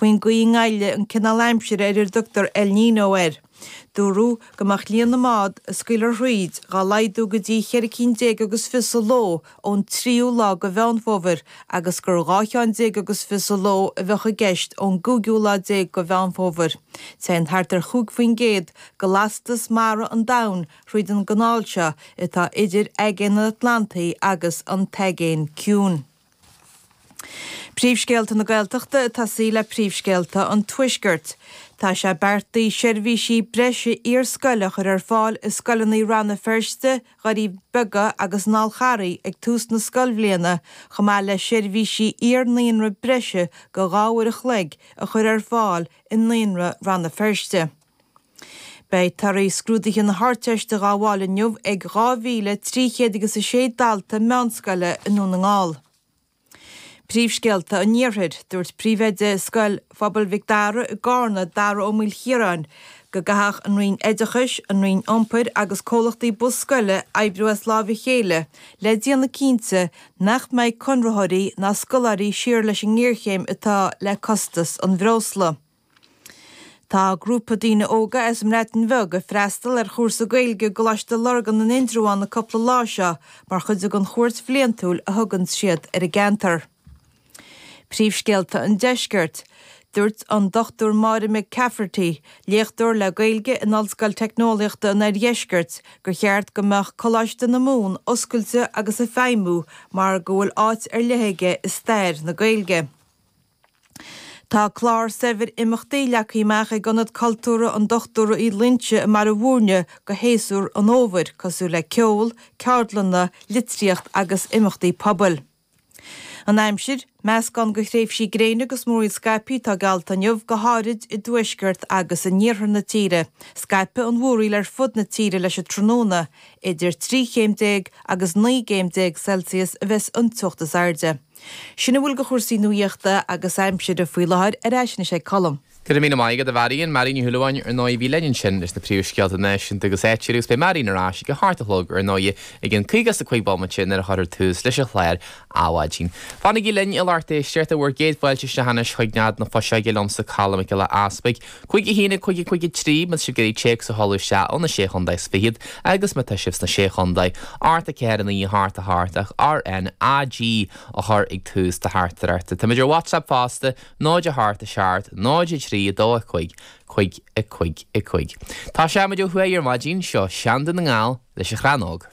faoin gcaoi a ngoilleann an cineál aimsire ar ar dtugtar El Niño air. Dúradh go mbeadh líon na mbád a scaoiltear thríd dhá laghdú go dtí cheithre cinn déag agus fiche sa ló ón tríú lá de Mheán Fómhair agus gur dhá cheann déag agus fiche sa ló a bheadh i gceist ón gcúigiú lá déag de Mheán Fómhair. Téann thart ar chúig faoin gcéad de lastas mara an domhain thríd an gcanáil seo atá idir Aigéan an Atlantaigh agus an tAigéan Ciúin. Príomhscéalta na Gaeltachta ag tosaí le Príomhscéalta an Tuaiscirt. Tá sé beartaithe seirbhísí breise iar-scoile a chur ar fáil i scoileanna Rann na Feirste, Dhoirí Beaga agus an Fhál Charraigh ag tús na scoilbhliana chomh maith le seirbhísí iar-naíonra breise go dhá uair a chloig a chur ar fáil i Naíonra Rann na Feirste. Beidh torthaí scrúduithe na hArdteiste dhá bhfáil inniu ag dhá mhíle trí chéad agus a sé dalta meánscoile i nDún na nGall. Príomhscéalta an Iarthair. Dúirt Príomhoide Scoil Phobail Mhic Dara i gCarna, Dara Ó Maoilchiaráin, go gcaithfeadh an Roinn Oideachais, an Roinn Iompair agus comhlachtaí bus scoile oibriú as lámha a chéile le déanamh cinnte nach mbeidh conraitheoirí ná scoláirí siar leis an ngéarchéim atá le costas an bhreosla. Tá grúpa daoine óga as an mBreatain Bheag ag freastal ar chúrsa Gaeilge i gColáiste Lurgan in Indreabhán an cúpla lá seo mar chuid den chuairt bhliantúil a thugann siad ar an gceantar. Príomhscéalta an Deiscirt. Dúirt an Dr Máire McCafferty, léachtóir le Gaeilge in Ollscoil Teicneolaíochta an Oirdheiscirt, gur cheart go mbeadh Coláiste na Mumhan oscailte agus ag feidhmiú mar go bhfuil áit ar leith aige i stair na Gaeilge. Tá clár saibhir imeachtaí leagtha amach ag Ionad Cultúrtha an Dochtúra Uí Loingsigh i mBaile Mhúirne do shéasúr an fhómhair, cosúil le ceol, ceardlanna, litríocht agus imeachtaí pobail. An aimsir, Meascán de thréimhsí gréine agus múraíl scaipthe atá geallta inniu, go háirid i dtuaisceart agus in iarthar na tíre. Scaipfidh an mhúraíl ar fud na tíre leis an tráthnóna. Idir trí chéim déag agus naoi gcéim déag Celsius a bheas an teocht is airde. Sin a bhfuil de chúrsaí nuaíochta agus aimsire faoi láthair. Ar ais anois ag Colm. Go raibh míle maith agat, a Mharion. Marion Ní Shúilleabháin, ar ndóigh, a bhí linn ansin leis na príomhscéalta náisiúnta agus áitiúla agus beidh Marion ar ais ag a hocht a chlog, ar ndóigh, ag an caoga is a cúig bomaite nuair a chuirfear tús leis an chlár Adhmhaidin. Fanaigí linn an lucht éisteachta bhur gcéad fáilte isteach anois chuig Nead na Fuiseoige liomsa Colm Mac Giolla Easpaig, Chuige 1 ag Chuige Chuige 3 mas sibh ag iarraidh téacs a shamhlú isteach ó na Sé Chontae is Fichead agus má tá sibh sna Sé Chontae, Art 4 9 Heart 4 Heart ach RN AG a chur ag tús do Heart ar Art. Táimid ar WhatsApp fosta, 0 a Heart 6 Heart 0 3 2 5 Cuig a cuig a cuig. Tá Seáimid ó thuaidh ar maidin, seo Seanda na nGall leis a chrannóg.